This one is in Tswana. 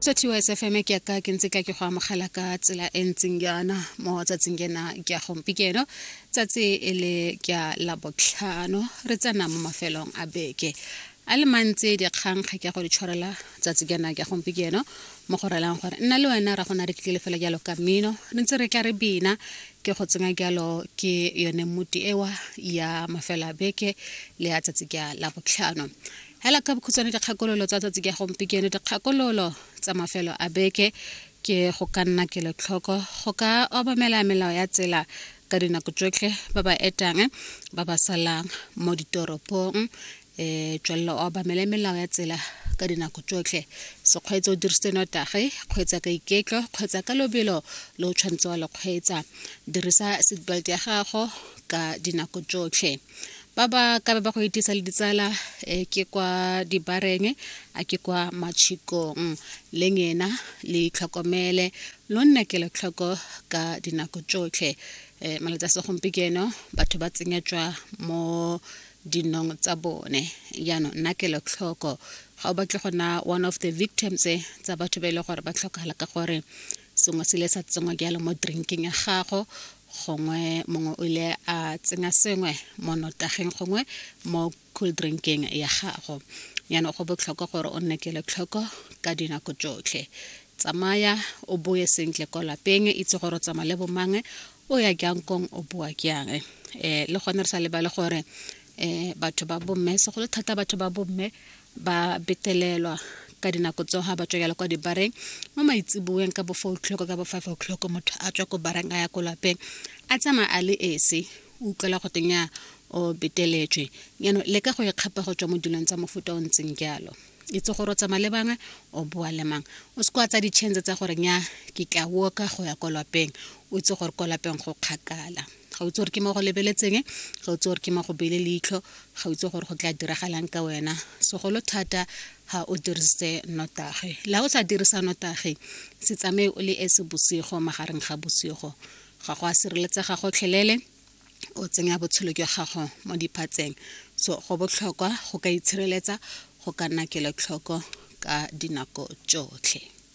sa thiwa sfm ke ka ke ntse ka ke go amogela ka tsela e ntseng yana mo tsatsing kena ke ya gompikeno tsatsi e le ke ya labotlhano re tsena mo mafelong a beke a le mantsi dikgang ga ke ya go di tshwarela tsatsi kena ke ya gompikeno mo go relang gore nna le wena ra go na re tlile fela jalo ka mmino re ntse re tla re bina ke go tsenya jalo ke yone mmuti ewa ya mafelo a beke le ya tsatsi ke ya labotlhano hela ka bokhutshwane dikgakololo tsa tsatsi ka gompieno dikgakololo tsa mafelo a beke ke go ka nna kelotlhoko go ka obamela melao ya tsela ka dinako tsotlhe ba ba etang ba ba salang mo ditoropong um eh, tswelelo obamele melao ya tsela ka dinako tsotlhe sekgweetsa o dirisitse notage kgweetsa ka iketlo kgweetsa ka lobelo le o tshwanetse wa lekgweetsa dirisa seatbelt ya gago ka dinako tsotlhe ba ba ka be ba go itisa le ditsala um ke kwa dibareng a ke kwa matšhikong le ngena le itlhokomele lo nne kelotlhoko ka dinako tsotlhe um malatsi a segompieno batho ba tsenyetswa mo dinong tsa bone jaanong nna kelotlhoko ga o batle go na one of the victims tsa batho ba e leng gore ba tlhokagala ka gore sengwe se ile sa tsenngwa jalo mo drinkeng ya gago gongwe mongwe o ile a tsenya sengwe mo notageng gongwe mo cool drinkeng ya gago yana go botlhokwa gore o nne kelotlhoko ka dinako tsotlhe tsamaya o boe sentle ko lapeng itse gore o tsamaya le bomange o ya jang kong o boa jang um eh, le gone re sa lebale gore um batho ba bomme segolo thata batho ba bomme ba betelelwa ka dinako tseo ga ba tswa kwa dibareng mo maitseboeng ka bo four o'clock ka bo five o'clock motho a tswa ko bareng a ya ko lapeng a tsamaya a le ese o utlwela go teng ya o beteletswe yano le ka go ikgapa go tswa mo dilong tsa mofuta o ntseng jalo itse gore o tsamaya le bangwe o boa le mang o se kwa tsa ditšhense tsa gore nya ke tla woka go ya ko lapeng o itse gore ko lapeng go kgakala ga utse gore ke mo go lebeletseng ga utse gore ke mo go beile leitlho ga utse gore go tla diragalang ka wena segolo thata ga o dirise notage la o sa dirisa notage se tsamaye o le ese bosigo magareng ga bosigo ga go a sireletsega gotlhelele o tsenya botshelo jwa gago mo diphatseng so go botlhokwa go ka itshireletsa go ka nna kelotlhoko ka dinako tsotlhe